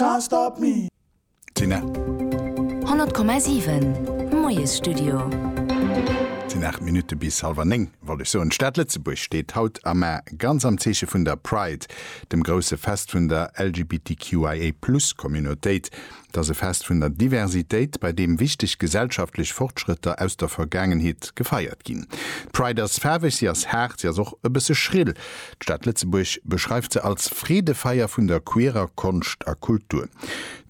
Can't stop me. Tina. 100,7, Moiesstudio. Sinn 8 Minutte bis halwer 9, wollt ech soen. D'Stad Lëtzebuerg steet haut a mar ganz am Zeeche vun der Pride, dem grousse Fest vun der LGBTQIA-Plus-Communautéit. Et ass e Fest vun der Diversitéit, bei deem wichteg gesellschaftlech Fortschrëtter aus der Vergaangenheet gefeiert ginn. D'Pride ass faarweg, si ass haart, si ass och e bësse schrill. D'Stad Lëtzebuerg beschreift se als Freedefeier vun der queerer Konscht a Kultur.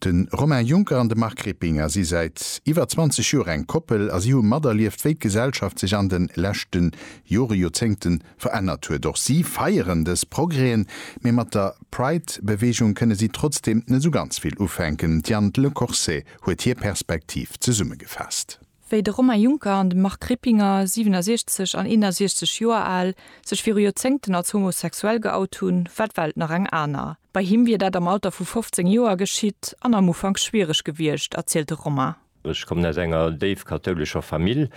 De Romain Juncker an de Marc Rippinger si säit iwwer 20 Joer eng Koppel a si hu materlieft, wéi d'Gesellschaft sech an de leschte Jore, Joerzéngte verännert huet. Och si feieren dës Progrèsen, mee mat der Pride-Beweegung kënne si trotzdeem net esou ganz vill ufänken. D'Diane Lecorset huet hir Perspektiv zesummegefaasst. Wéi de Romain Juncker an de Marc Rippinger, 67 an 61 Joer al, sech viru Joerzéngten als homosexuell geout hunn, war d'Welt nach eng aner. Bei him wier dat am Alter vu 15 Joer geschitt an am Ufank schwiereg gewiescht, erzielt de Romain. Ech kommen aus enger déif kathoulescher Famill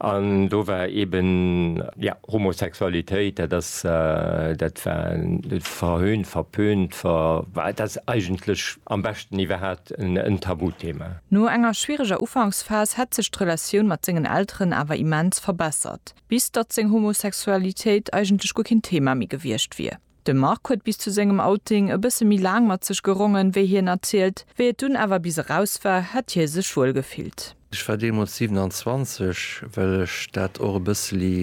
an do war eeben, jo, Homosexualitéit, dat ass, dat war verhöhnt, verpönt, ver, dat ass eigentlech, Am beschten iwwerhaat en Tabuthema. No enger schwiereger Ufanksphas hätt sech d'Relatioun mat sengen Elteren awer immens verbessert, bis datt seng Homosexualitéit eigentlech guer keen Thema méi gewiescht wier. De Marc huet bis zu sengem Outing e bësse méi laang mat sech gerongen, wéi hien erzielt. Wéi et dunn awer bis eraus war, hätt hie sech wuel gefillt. Ech war deemools 27, well ech dat och e bësseli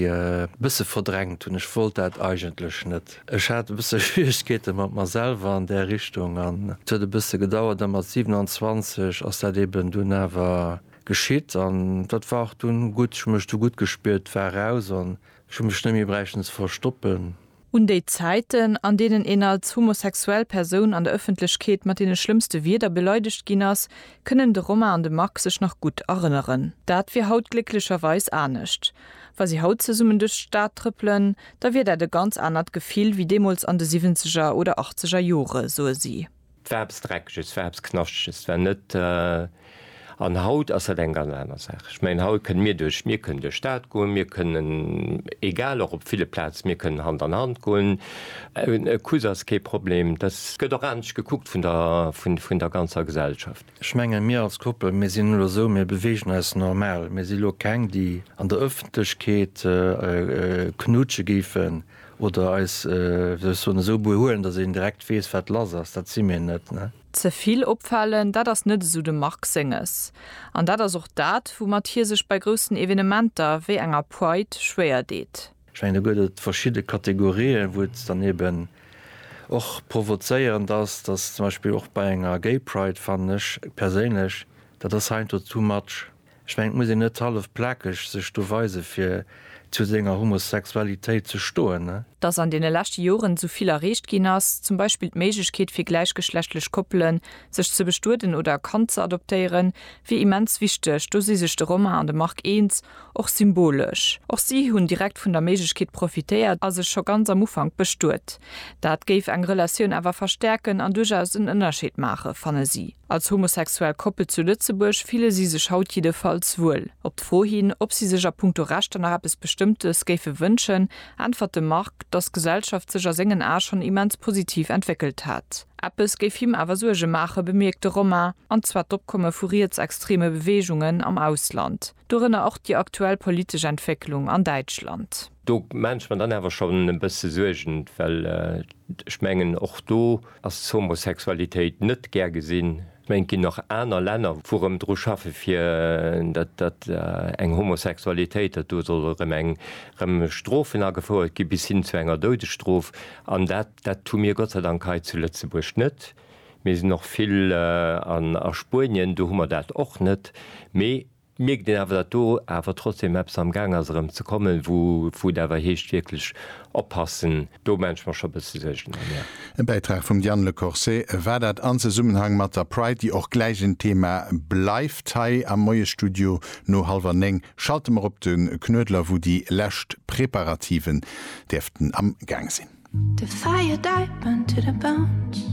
bësse verdrängt hunn. Ech wollt dat eigentlech net. Ech hat e bësse Schwieregkeete mat mer selwer an där Richtung an et huet e bësse gedauert a mat 27 ass dat eben dunn awer geschitt an dat war och dunn gutt. Ech hu mech du gutt gespiert, war eraus an ech hu mech net méi bräichten ze verstoppen. Un déi Zäiten, an deenen een als homosexuell Persoun an der Ëffentlechkeet mat deene schlëmmste Wierder beleidegt ginn ass, kënnen de Romain an de Marc sech nach gutt erënneren. Dat wier haut glécklecherweis anescht. Wa si haut zesummen duerch d'Stad trëppelen, da wier dat e ganz anert Gefill wéi deemools an de Siwwenzeger oder Achtzeger Jore, soe si. 't war eppes Dreckeges, 't war eppes Knaschtges, 't war net, an haut ass dat eng ganz aner Saach. Ech mengen, haut kënne mir duerch, mir kënnen duerch d'Stad goen, mir kënnen, egal, och op ville Plaze, mir kënnen Hand an Hand goen, e Kuss ass kee Problem, dass gëtt och anescht gekuckt vun der, vun der ganzer Gesellschaft. Ech mengen, mir als Koppel, mir sinn elo esou, mir beweegen eis normal, mir si elo keng, déi an der Ëffentlechkeet knutsche géifen. Oder eis, wéi soll ech soen, esou behuelen, datt een direkt weess, wat lass ass. Dat si mir net, ne? Ze vill opfalen, dat ass net esou de Marc senges. An dat ass och dat, woumat hie sech bei groussen Evenementer wéi enger Pride schwéier deet. Ech mengen, do gëtt et verschidde Kategorien, wou et dann eben och provozéierend ass, datt zum Beispill och bei enger Gay Pride, fannen ech perséinlech, dat ass heiansdo too much. Ech mengen et muss een net hallef plakeg sech do weise fir zu senger Homosexualitéit ze stoen. Dass an deene leschte Joren esou vill erreecht ginn ass, zum Beispill d'Méiglechkeet fir gläichgeschlechtlech Koppelen, sech ze bestueden oder e Kand ze adoptéieren, wier immens wichteg. Do si sech de Romain an de Marc eens, och symbolesch. Och si hunn direkt vun der Méiglechkeet profitéiert a sech scho ganz am Ufank bestuet. Dat géif eng Relatioun awer verstäerken an duerchaus en Ënnerscheed maachen, fanne si. Als homosexuell Koppel zu Lëtzebuerg fille si sech haut jiddefalls wuel. Op d'Fro hin, ob si sech a punkto Rechter nach eppes Bestëmmtes géife wënschen, äntwert de Marc, dass d'Gesellschaft sech a sengen Ae schonn immens positiv entwéckelt hätt. Eppes géif him awer Suerge maachen, bemierkt de Romain, an zwar d'Opkomme vu rietsextreme Beweegungen am Ausland. Dorënner och déi aktuell politesch Entwécklung an Däitschland. Do maache mer dann awer schonn e bësse Suergen, well ech mengen, och do ass d'Homosexualitéit net gär gesinn. Ech mengen, et ginn nach aner Länner, wou erëm dru schaffe fir datt eng Homosexualitéit, datt do solle erëm eng erëm Strofen agefouert gi bis hin zu enger Doudesstrof. An dat hu mir Gott sei Dank hei zu Lëtzebuerg net. Mir sinn och vill an a Spuenien, do hu mer dat och net. Mee et mierkt een awer, datt do awer trotzdeem eppes am Gaang ass erëm ze kommen, wou wou et awer heescht wierklech oppassen. Do maache ech mer scho e bësse Suergen ëm, jo. E Bäitrag vum Diane Le Corset war dat an Zesummenhang mat der Pride, déi och gläich en Thema bleift hei am Moiesstudio. No hallwer néng schalte mer op de Knuedler, wou déi lescht Preparativen däerften am Gaang sinn. The fire died, burned to the bones.